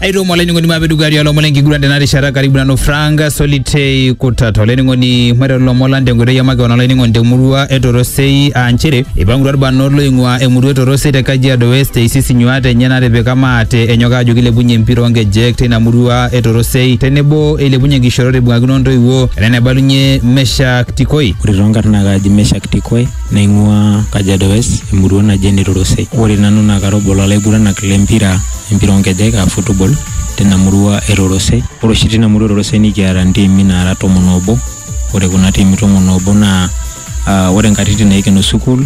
aitoo mwa olainining'oni maape dukuya tialo lomon lenkiguran tena rishata karibu nanu frank solitei kutata olainining'oni maiteru lomon lang tenkoitoi e makeon olainining'oni temurua e torosei aa nchere eipangutua irbanot loing'ua emurua e torosei te kajiado west eisis inyuaat enye natipika maate enyok aajo kilepunye empira oonkejek teina murua e torosei tenebo eilepunye nkishorot eibung'akino ntoiwuo ena enaibalunye meshak tikoi ore toonkarn naa kaaji Meshak Tikoi naing'ua Kajiado West emurua naji ene Torosei. Ore nanu naa kara obo lolaiguranak lempira empira oonkejek aa football tina murua e Rorosei. Ore oshi tina murua e Rorosei nikiata ntiimi naara tomon oobo. Ore kuna tiimi tomon oobo naa ore nkatitin naikeno sukuul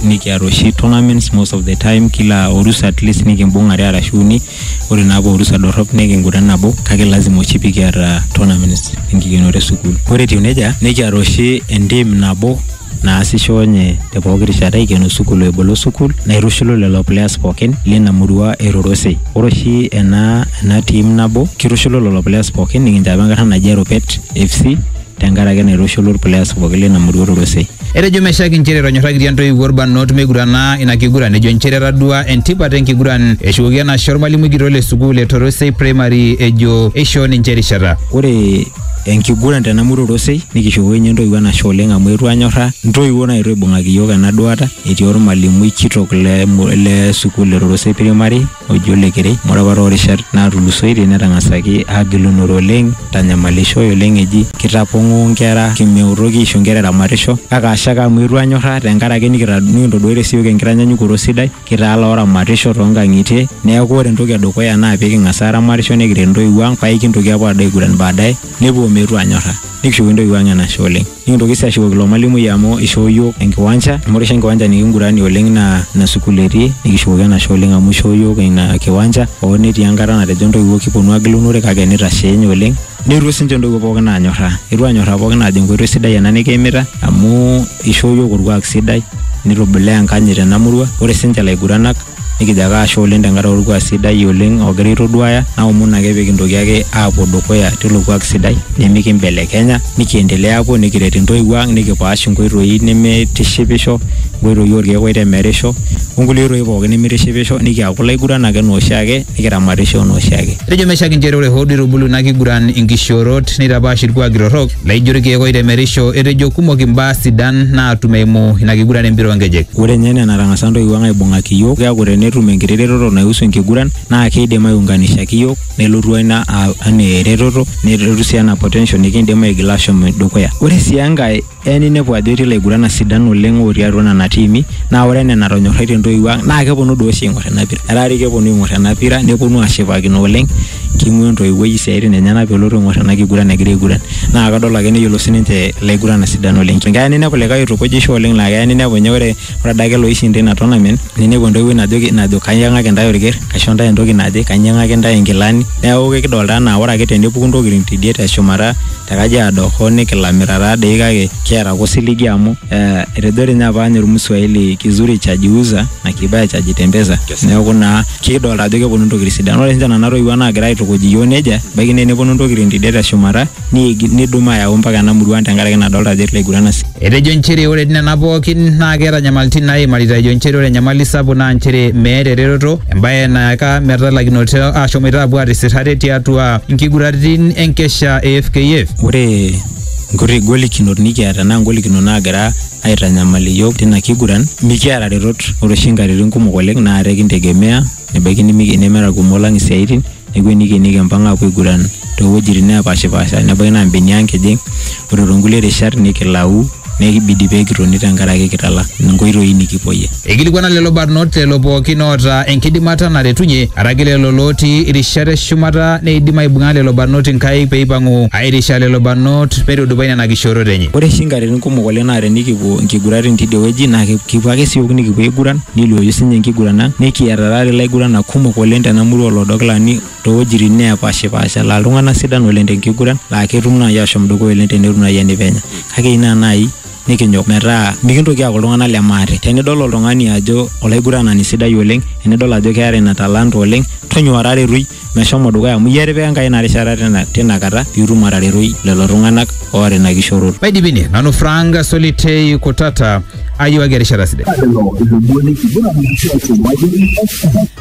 nikiata oshi tournaments most of the time kila orusa at least nikimbung are arashu uni. Ore naa apa orusa dorrop nikinguran nabo kake lazima oshi pikiata tournaments enkikenore e sukuul. Ore etiu neija nikiata oshi entiim nabo naasisho nye te pooki rishata eikeno sukul o ebolo sukul naitushulu lelo players pookin lina murua e Rorosei. Ore oshi ena ena team nabo kitushulu lelo players pookin nikinchapa enkarna naji Eropet FC tenkaraki naitushulu irplayers pookin lina murua e Rorosei. Etejo Meshack inchere etonyorrakitia ntoiwuo ilbarnot meigurana ina kiguran ejo inchere etadua entipat enkiguran. Eshukoki enashe olmalimui kitok le sukul e Torosei Primary ejo eishoo ninche erishata. Ore enkiguran tena murua orosei nikishukoki ninye intoiwuo enashe oleng amu etu anyorra intoiwuo naetuo aibung'aki iyiook ena duata etii ormalimui kitok le, mu- le sukuul e rorosei primary oji ole kerei amu ore apa toorishat natulusoitie netang'asaki agilunore oleng tanyamalishoi oleng eji kitapong'oo inkera kimeutoki aisho inkera eramatisho kake ashe ake amu etu anyorra tenkaraki nikita- nikintoduatie siyiook enkitanyanyukoto sidai Kitaa looramatisho too nkang'itie neeku ore entoki edukuya naa pee king'as aaramatisho nikiret intoiwuo ang' paa aikintoki aapuo aado aiguran baadaye nepuo meetu aanyorra nikishukoki intoiwuo ang' enashe oleng'. Nikintoki sii ashukoki ilo malimui amu ishoo iyiook enkiwanja amu ore oshi enkiwanja nikinguranie oleng' naa ina sukuul etii nikishukoki enashe oleng' amu ishoo iyiook ina kiwanja hoo netii enkata natejo intoiwuo kiponu agilunore kake nitashe ninye oleng'. Neetuo siinche intoiwuo pookin aanyorraa, eetuo aanyorraa pookin aajo enkoitoi sidai ena nikiimita amu... Ishoo iyiook orkuak sidai nitubulaa enkanyit tena murua. Ore sinche laiguranak nikijo ake ashe oleng tenkaraki orkuak sidai oleng ogira aitoduaya naomon ake pikintoki ake apuo dukuya tilo kuak sidai nimikimbelekenya nikiendelea apuo nikiret intoiwuo ang nikipaash inkoitoi nimitishipisho, inkoitoi orkeek oitemerisho onkulie oitoi pooki nimitishipisho nikiaku ilaiguranak enaa oshiake nikiramatisho enaa oshiake. Etejo Meshack inchere ore hoo duo eitubulu ina kiguran inkishoorot neitapaash ilkuaki torrok, Neijo irkeek oitemerisho, etejo kumok imbaa sidan naatum eimu ina kiguran empira oonkejek. Ore ninye enaa enatang'asa ntoiwuo ang aibung'aki iyiook, keeku tenetum enkiti retoto naihusu enkiguran naa keidim aiunganishaki iyiook nelotu ina anaa eretoto nelotu sii anaa potential nikiindim aigila aashom dukuya. Ore sii enkae, eya ninepu ajo etii ilaiguranak sidan oleng otii atua nena tiimi naa ore enaa enatonyorraitie intoiwuo ang naa keponu doi oshi aing'or ina pira. Etaa doi keponu aing'or ena pira neponu aashipakino oleng Keing'uaa entoiwuoi isiatin enyena pelotu aing'or ena kiguran egira aiguran. Naa kadol ake neyiolo sininche ilaiguranak sidan oleng. Keya ninepu likae oitukujisho oleng laa keya ninepu ninye ore adake loishinda ina tournament ninepu entoiwuoi najoki najo kaiyang'aki intae olker, kaisho intae entoki naje, kainyang'aki intae inkilani. Neeku kekidolita enaa ore ake tenepuku intokitin tidie teshumata te Kajiado hoo nikilamita taadoi kake kiata ake osiligi amu etejo dii ninye apa ninye olmswahili kizuri cha jiuza na kibaya cha jitembeza neeku naa kidolta ajo keponu ntokitin sidan ore sinche nana toiwuo naagira aitukuj iyiook nejia baiki naa eneponu ntokitin tidie teshumata niigil nidum ayau mpaka ena murua ang tenkaraki nadolta ajo etii ilaiguran asi Etejo nchere ore nena pookin naa keeta nyamaltin naaimarita ejo nchere ore enyamali sapuk naa nchere meeta eretoto embae nayaka metalakinoto aashomoita apuo aatisir ate tiatua nkiguraritin enkesha e fkf. Ore nkuti golikinot nikiata naa ngolikinot naagira aitanyamal iyiook tina kiguran mikiata retot ore oshi nkatitin kumok oleng naa ate kintegemea nebaiki nimi- nemeeta irkumok lang isiaitin neeku enikeni kimpang aapuo aiguran toowuejitin neepashipaasha nebaiki naa imbenia ang kijing ore toonkulie rishat nikilau nekibidi pee kitoni tenkaraki kitala inkoitoi nikipuoyie. Eikilikuana lelo barnot lelo pookin oota enkidimata naretunye, araki lelo lootii irishat e shumata neidim aibung'a lelo barnot inkaik pee eipang'u aairisha lelo barnot meitudupai nena kishoorot enye. Ore oshi inkatitin kumok oleng naa tenikipuo inkiguratin teidie wueji naa kipuo ake siook nikipuo aiguran neiluoyu sii ninye enkiguran ang. Nikiata taata ilaiguranak kumok oleng tena murua oo Lodokilani too wuejitin neepaashipaasha laa iltung'anak sidan oleng te nkiguran laa ketum naai aashom dukuya oleng tenetum naai enepenya. Kake ina naai nikinyok metaa mikintoki aaku iltung'anak le maate. Tenidol oltung'ani ajo olaiguranani sidai oleng, enidol ajo keeta ina talanta oleng, tonyua taretoi meshomo dukuya amu iyie etipika Enkai ina rishata tina kata pee itum ataretoi lelo tung'anak oota ina kishooroto. Maidipi ine, nanu Frank Solitei Kutata, ayiewaki erishata sidai. Lelo ilomon lenkiguran enkishui olchumati, Express.